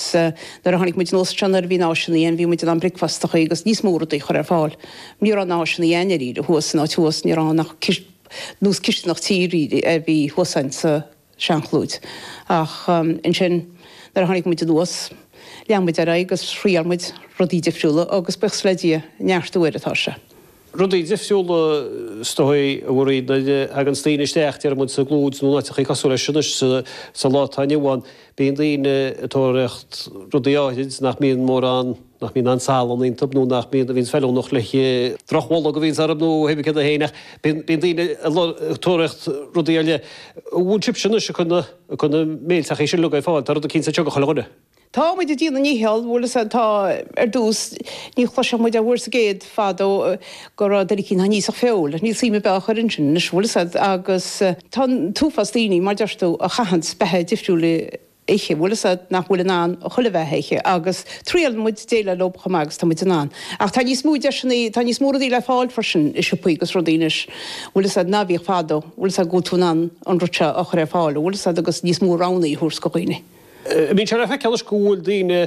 sea, nuair a tháinig muid anuas ansin nuair a bhí muid in ann é sin a dhéanamh, bhí muid in ann bricfeasta a chur agus níos mó rudaí a chur ar fáil. Ní raibh muid in ann é sin a dhéanamh, dháiríre, thuas, san áit thuas, ní raibh ann ach nós cisteanach tí, really, a bhí thuas ann sa seanchlúid. Ach ansin, nuair a tháinig muid anuas, lean muid ar aghaidh agus thriail muid rudaí difriúla agus buíochas le Dia, ag neartú air atá sé. Rudaí difriúla, is dóigh, a iarrann, nuair a thaganns daoine isteach, deir muid, sa gclúid nó in áiteachaí cosúil leis anois sa lá atá inniu ann. Bíonn daoine ag tóraíocht rudaí áirid nach mbíonn mórán, nach mbíonn aon salann iontub nó nach mbíonn, a bhíonns feiliúnach le haghaidh drochbholg a bhíonns orthub nó a thuigfidh tú féin ach bíonn daoine ag tóraíocht rudaí ar leith. An bhfuil sibhse anois ag cur na béilteachaí sin uilig ar fáil, tá rud eicínt sa teach do chuile dhuine. Tá muid ag déanamh ár ndícheall, bhfuil a fhios a'd, tá, ar dtús ní chloisfeadh muid an uair sin, i gcéad fadó go raibh duine eicínt nach n-íosfadh feoil, níl suim ar bith á chur ansin anois, bhfuil a fhios a'd, agus tá an t-uafás daoine mar a deir tú a chaitheann beatha difriúil a ithe, bhfuil a fhios a'd, nach bhfuil in ann chuile bheatha a ithe agus triaileann muid déileáil leo chomh maith agus tá muid in ann. Ach tá níos mó deiseanna, tá níos mó rudaí le fáil freisin i siopaí agus rudaí anois, bhfuil a fhios a'd, ná a bhíodh fadó, bhfuil a fhios a'd, go bhfuil tú in ann an rud seo a chur ar fáil, bhfuil a fhios a'd, agus níos mó roghanna a thabhairt do dhaoine. Bíonn sé le feiceáil anois go bhfuil daoine,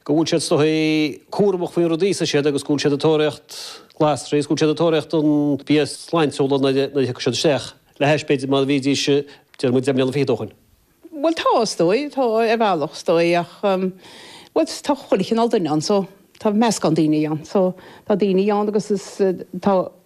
go bhfuil siad is dóigh, cúramach faoin rud a íosann siad agus go bhfuil siad ag tóraíocht glasraí agus go bhfuil siad ag tóraíocht an bia sláintiúil nuair a thiocfaidh siad isteach, le hais, b'fhéidir, mar a bhídís, deir muid, deich mbliana fichead ó shin. Bhuel, tá is dóigh, tá ar bhealach is dóigh ach, bhuel, tá chuile chineál duine ann so tá meascán daoine ann. So tá daoine ann agus is, tá,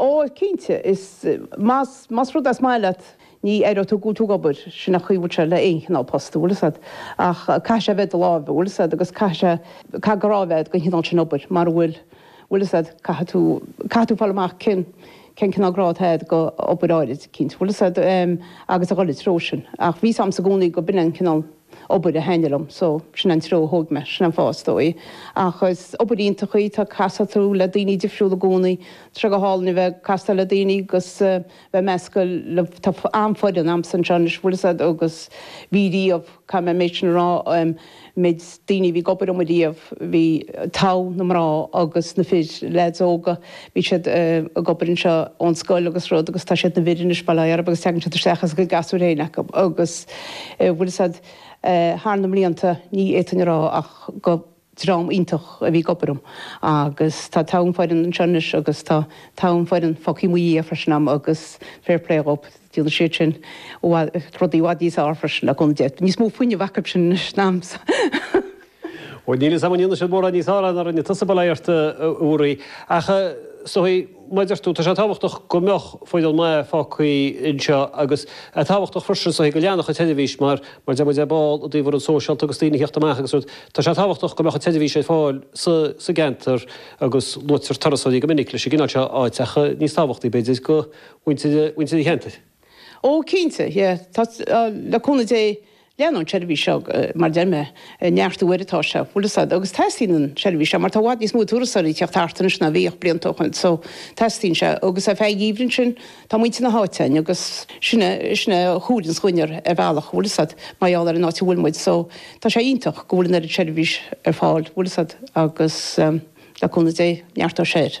Ó, cinnte, is, más, más rud é is maith leat, ní aireoidh tú ag obair, sin an chaoi a bhfuil sé le aon chineál post, an bhfuil a fhios a'd, ach caithfidh sé a bheith i do lámha, an bhfuil a fhios a'd, agus caithfidh sé, caithfidh grá a bheith a'd don chineál sin obair, mara bhfuil, an bhfuil a fhios a'd, caithfidh tú, caithfidh tú fáil amach cén, cén cineál grá atá a'd do obair áirid, cinnte, an bhfuil a fhios a'd, agus a dhul i dtreo sin. Ach bhí a fhios a'msa i gcónaí go b'in an cineál, obair a thaitnigh liom so sin an treo a thóg mé, sin an fáth is dóigh. Ach is obair iontach í, tá, castar tú le daoine difriúla i gcónaí, tá sé go hálainn a bheith ag casadh le daoine agus bheith measctha le, tá an-fhoireann a'msa anseo anois, bhfuil 'fhios a'd agus bhí riamh, caithfidh mé an méid sin a rá, méid daoine a bhí ag obair a'm riamh, bhí, togh na mná agus na fir, leaids óga, Bhí siad ag obair anseo ón scoil agus rud agus tá siad ina bhfir anois, bail orthub agus tagann siad isteach is a gcuid gasúir féin acu agus bhfuil a fhios a'd thar na mblianta ní fhéadfainn a rá ach gur dream iontach a bhí ag obair a'm agus tá togha foireann anseo anois agus tá togha foireann fágtha i mo dhiaidh freisin a'm agus fair play dhóib, déanann siad sin i bhfad rudaí i bhfad níos fearr freisin ag a bhfuil níos mó fuinneamh acu sin anois ná a'msa. Ó, níl 'fhios a'm an ndéanann siad mórán níos fearr ná rinne tusa, bail ó Dhia ort a Mharie. Ach, is dóichí, mar a deir tú, tá sé tábhachtach go mbeadh foireann mhaith fágthaí anseo agus tá sé tábhachtach freisin, is dóichí, go leanfadh an tseirbhís mar, mar deir muid, ar ball i dtaobh rudaí sóisialta agus daoine a theacht amach agus rud. Tá sé tábhachtach go mbeadh an tseirbhís ar fáil sa, sa gceantar agus luaitear turasóirí go minic leis an gcineál seo áit ach níos tábhachtaí, b'fhéidir, do mhuintir, muintir an cheantair. Ó, cinnte, yeah, tá, le cúnamh Dé, leanann an tseirbhís seo, mar a deir mé, ag neartú oiread atá sé, bhfuil 'fhios a'd, agus teastaíonn an tseirbhís seo, mar tá i bhfad níos mó turasóirí ag teacht thart anois ná a bhíodh blianta ó shin, so, teastaíonn sé, agus ar feadh an gheimhridh sin, tá muintir na háite a'inn, agus sin é, sin é a chabhraíonns linne ar bhealach, bhfuil 'fhios a'd, mar gheall ar an áit a bhfuil muid, so, tá sé iontach go bhfuil an oiread seirbhís ar fáil, bhfuil 'fhios a'd, agus, le cúnamh Dé, neartóidh sé air.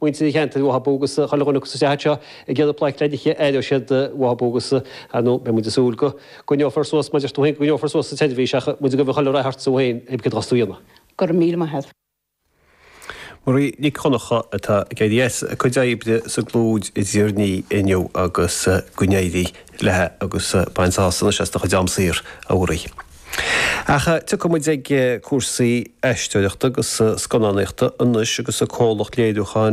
muintir an cheantair uathu agus chuile dhuine acu sa gceantar seo ag iarraidh plaic leidliche, éireoidh siad uathu agus, ar ndóigh, beidh muid ag súil go gcoinneofar suas, maidir leis tú féin, go gcoinneofar suas an tseirbhís ach muid ag iarraidh chuile rath ortsa féin cibé céard a bheas tú a dhéanamh. Go raibh míle maith agat. Marie Nic Dhonncha atá ag éirí as a cuid oibre sa gCrompán i dTír an Fhia inniu agus go n-éirí léi agus bain sásamh anois as do chuid am saor, a Mharie. Ach tiocfaidh muid ag cúrsaí aisteoireachta agus scannánaíochta anois agus an comhlacht léiriúcháin,